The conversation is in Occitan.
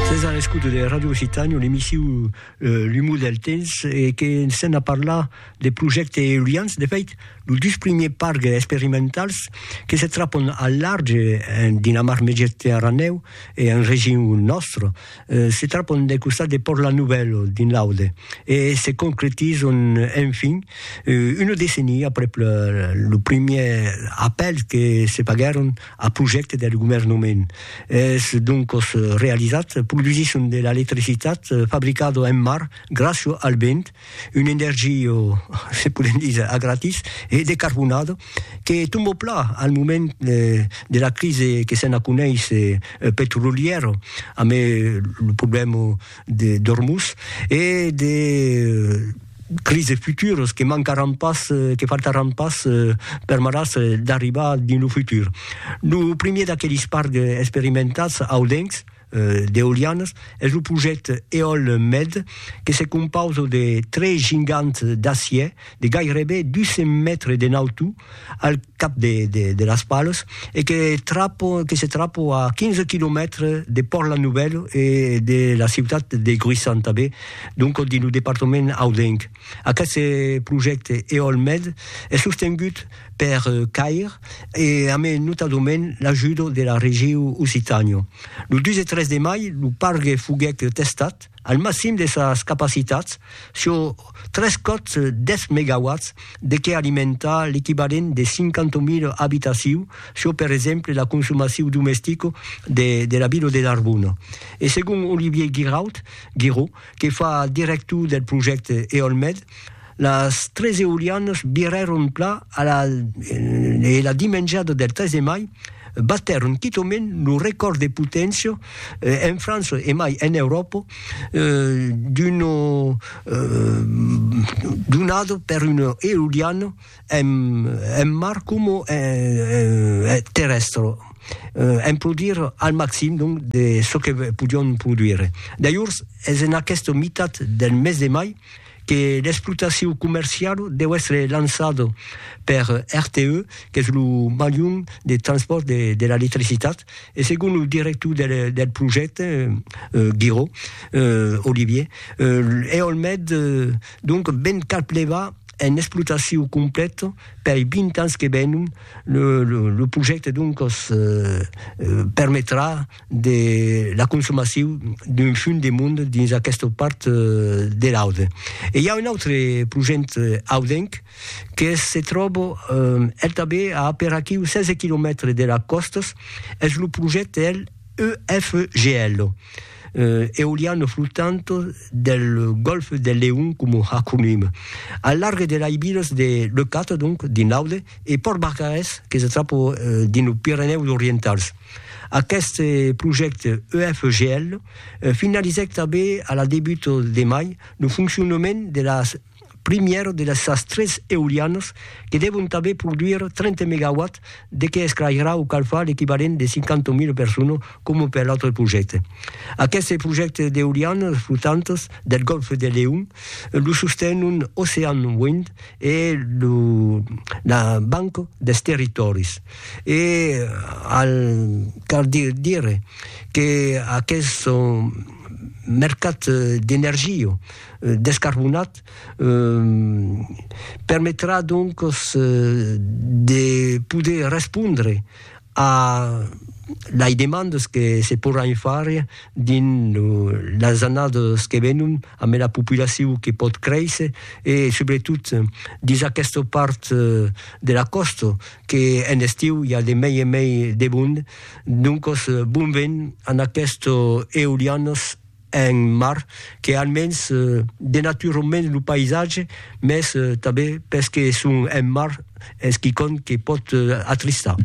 Sètz a l'escouta de Radio Occitània, l'emissiu L'umor del temps, e que sèm a parlar de projèctes eolians. De fèit, los dus primiers parcs experimentals que se trapon al large en Dinamar Mediterranèu e en region nòstra, se trapon del costat de Pòrt La Nouvelle, dins l'Aude, e se concretizon enfin una decennia aprèp lo primièr apèl que se faguèron Ath projècte deth governoment es doncos realizat produsisson de l'electricitat fabricado en mar gràcio al vent, un energio, se podem díser, a gratis e decarbonado que tombo plan al moment de la crise que se'n a coneis petrolièro amé lo problèma d'Ormuz e de crises futuras que mancaràn pas, que faltaràn pas permetàs d'arribar dins lo futur. Lo primièr d'aquelis parcs experimentats audencs d'eolianas es lo projècte Eolmed que se compausa de tres gigants d'acièr de gairebe 200 mètres de nautor, al cap de de las palos e que trapo que se trapo a 15 quilomètres de Pòrt la Nouvelle e de la ciutat de Gruissan tanben donc dins lo departament audenc. Aqueste projècte Eolmed es sostengut per CAIR e amé notadament l'ajuda de la regiu Occitània. Lo 2 e 3 de mai lo pargue foguèt testat. al maxim de sas capacitats sur tres còps 10 megawatts de qué alimentar l'equivalent de 50.000 abitaciu sur per exemple la consumaciu domestica de la vila de Narbona. E segon Olivier Guiraud, Guiraud, que fa director del projècte Eolmed, Las tres eulianas virèron pla a la e la dimenjada del 3 de mai batèron quitaument lo recòrd de poténcia en França e mai en Euròpa d'una donada per una euliana en en mar coma en terrèstra en produire al maxim donc de çò que podián produire. Dajors es en aquesta mitat del mes de mai que l'explotacion comercial deu èstre lançada per RTE, qu'es lo malhon de transpòrt de l'electricitat, e segon lo director del projècte, Guiraud, Olivier, Eolmed donc ven cap levar en explotacion completa pei 20 ans que venon, lo projècte doncas permetrà de la consomacion d'un fum de mond dins aquesta part de l'Aude. E i a un autre projent audenc que se tròba el tanben a aperaquiu 16 quilomètres de las còstas, es lo projent del EFGL, Eoliano Flotante del Golfe del Leon coma acronim, al larg de las vilas de Leucate, donc dins l'Aude, e Pòrt Barcarès que se tròba dins los Pirenèus Orientals. Aqueste projècte EFGL finalizèc tanben a la debut de mai lo foncionament de la primièra de sas tres eolianas que devon tanben produire 30 megawatts de que esclairarà o calfar l'equivalent de 50.000 personas coma per l'autre projècte. Aqueste projècte d'eolianas flotantas del Gòlf de Leon lo sostenon Ocean Wind e la Banca dels Territòris. E al cal dire que aqueth mercat d'energia descarbonat permetrà donques de poder respondre a lei demandes que se porràn far dins las annadas que venon amb ela populacion que pòt créisser e subretot dins aquesta part de la còsta que en estiu i a de mei en mei de bond, doncos bon vent an aquestos eolianos en mar que almens denaturon mens lo païsatge mes tanben pes que son en mar es quicòm que pòt atristar.